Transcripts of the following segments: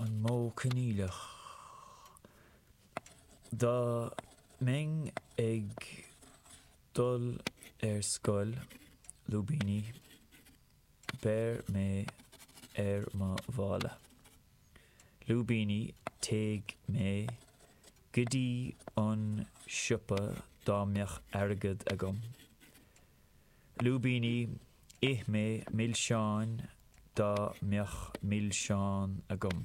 an modh coinníollach. Dá mbeinn ag dul ar scoil, lúibíní, beir mé ar mo mhála, lúibíní, téigh mé go dtí an siopa dá mbeadh airgead agam, Lúibíní, Ith mé milseáin dá mbeadh milseáin agam.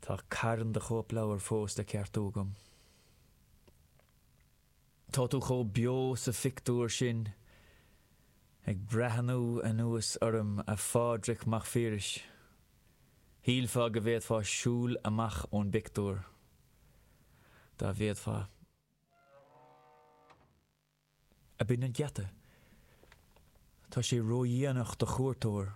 Tá carn de chóipleabhair fós le ceartú agam. Tá tú chomh beo sa phictiúr sin, ag breathnú anuas orm, a Phádraic Mhic Phiarais. Shílfeá go bhféadfá siúl amach ón bpictiúr, dá bhféadfá. Ab in an geata? Tá sé ródhéanach do chuairteoir.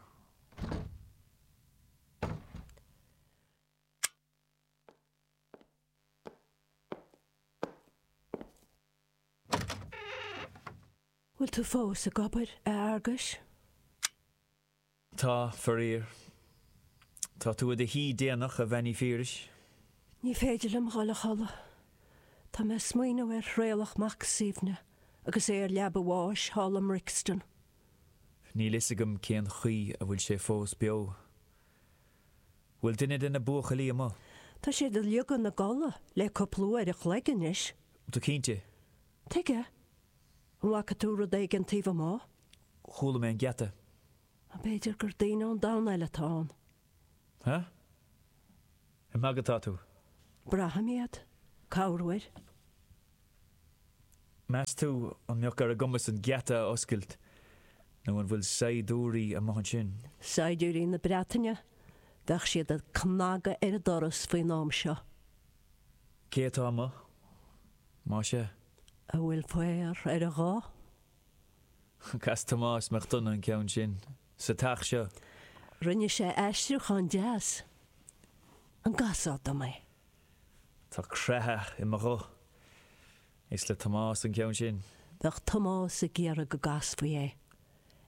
Bhfuil tú fós ag obair, a Fhearghuis? Tá, faraor. Tá tú i do shuí déanach, a Bhean Uí Phiarais. Ní féidir liom dhul a chodladh. Tá mé ag smaoineamh ar Thraolach Mac Suibhne agus é ar leaba a bháis thall i mBrixton. Níl fhios agam cén chaoi a bhfuil sé fós beo. Bhfuil duine de na buachaillí amuigh? Tá siad uilig ina gcodladh le cúpla uair a chloig anois. Tá cinnte. Tuige? An bhfaca tú rud éigin taobh amuigh? Chuala mé an geata. B'fhéidir gur daoine ón domhan eile atá ann. Ha? Ag magadh atá tú? Braithim iad corruair. Meas tú an mbeadh ar a gcumas an geata a oscailt nó an bhfuil saighdiúirí amuigh ansin? Saighdiúirí na Breataine? Bheadh siad ag cnagadh ar an doras faoin am seo. Cé atá amuigh, más ea? A bhfuil faobhar ar a ghuth? Chas Tomás Mac Donagh an ceann sin sa teach seo. Rinne sé aistriúchán deas. An gcasfá dom é? Tá creathadh i mo ghuth. Is le Tomás an ceann sin. Bheadh Tomás ag iarraidh go gcasfaí é.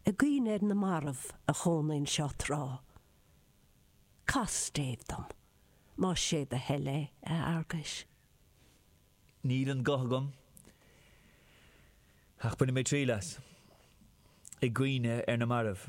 I gcuimhne ar na mairbh a chónaigh anseo tráth. Cas stéibh dom, más sé do thoil é, a Fhearghuis. Níl an guth agam, ach bainfidh mé triail as. I gcuimhne ar na mairbh.